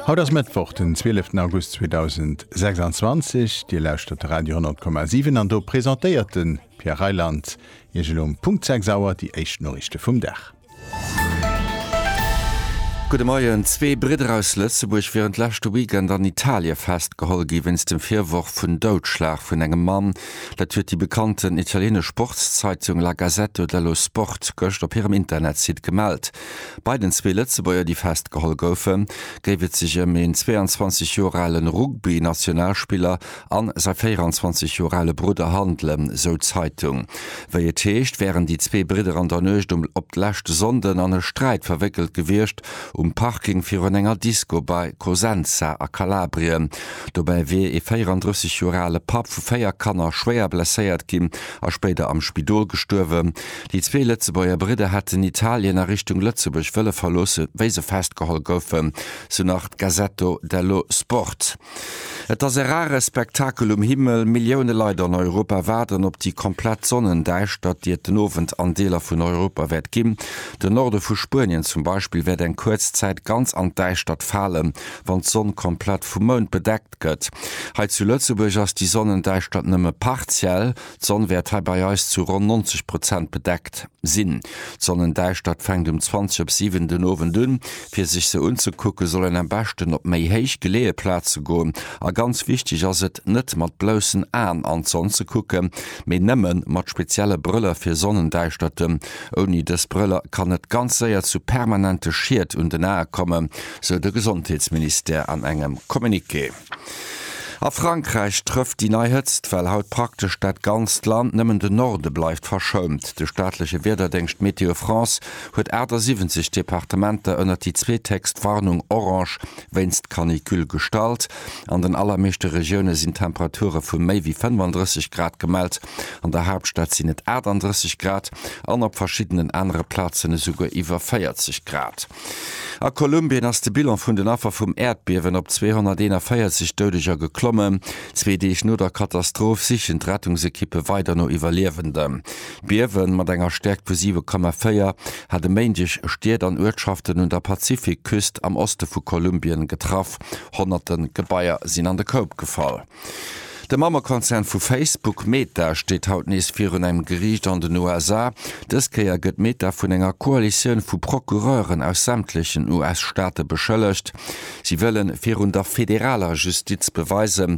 Haut ass Mëttwoch, den 12 August 2026. Dir lauschtert de Radio 10,7 an do presentéiert de Pierre Reyland Iech elo um Punkt 6 Auer déi éischt Noriichte vum Dag. Gudde Moien. Zwee Bridder aus Lëtzebuerg wieren d'leschte Weekend an Italie festgeholl gi wéinst dem Virworf vun Doudschlag vun engem Mann. Dat huet déi bekannten italienesch Sportszeitung La Gazzetto dello Sport gëscht op hirem Internetsite gemellt. Bei den zwee Lëtzebuerger, déi festgeholl goufen, géif et sech ëm een 22 Joer ale Rugby-Nationalspiller an säi 24 Joer ale Brudder handelen, esou d'Zeitung. Wéi et heescht, wären déi zwee Bridder an der Nuecht um op d'lescht Sonnden an e Sträit verwéckelt gewiescht, um Parking virun enger Disco bei Cosenza a Kalabrien. Dobäi wier ee 34 Joer ale Papp vu véier Kanner schwéier blesséiert ginn a spéider am Spidol gestuerwen. Déi zwee Lëtzebuerger Bridder hätten Italien a Richtung Lëtzebuerg wëlle verloosse wéi se festgeholl goufen, sou nach d'Gazzetto dello Sport. Et ass e rare Spektakel um Himmel, Millioune Leit an Europa waarden op déi komplett Sonnendäischtert, déi et den Owend an Deeler vun Europa wäert ginn. Den Norde vu Spuenien zum Beispill wäert eng kuerz Zäit ganz an d'Däischtert falen, wann d'Sonn komplett vum Mound bedeckt gëtt. Hei zu Lëtzebuerg ass déi Sonnendäischtert nëmme partiell. D'Sonn wäert hei bei eis zu ronn 90 Prozent bedeckt sinn. D'Sonnendäischtert fänkt um 20 op 7 den Owend un. Fir sech se unzekucke soll een am beschten op méi héich geleeë Plaze goen. A ganz wichteg ass et, net mat bloussen Aen an d'Sonn ze kucken, mee nëmme mat spezielle Brëller fir Sonnendäischterten. Ouni dës Brëller kann et ganz séier zu permanente Schied un den Ae kommen, sou de Gesondheetsministère an engem Communiqué. A Frankräich trëfft déi nei Hëtztwell haut praktesch dat ganzt Land, nëmmen de Norde bleift verschount. De staatleche Wiederdéngscht Météo France huet 78 Departementer ënnert déi zweethéchst Warnung orange wéinst Canicule gestallt. An den allermeeschte Regioune sinn Temperature vu méi wéi 35 Grad gemellt, an der Haaptstad sinn et 38 Grad an op verschiddenen anere Plazen esouguer iwwer 40 Grad. A Kolumbien ass de Bilan vun den Affer vum Äerdbiewen op 241 Doudeger geklommen. Zwee Deeg no der Katastroph sichen d'Rettungsekippe weider no Iwwerliewenden. D'Biewe mat enger Stäerkt vu 7,4 hat e Méindeg Stied an Uertschaften un der Pazifikküst am Oste vu Kolumbien getraff. Honnerte Gebaier sinn an de Koup gefall. De Mammekonzern vu Facebook, Meta, steet haut nees virun engem Geriicht an den USA. Dës Kéier gëtt Meta vun enger Koalitioun vu Procureuren aus sämtlechen US-Staate beschëllegt. Si wëllen virun der federaler Justiz beweisen,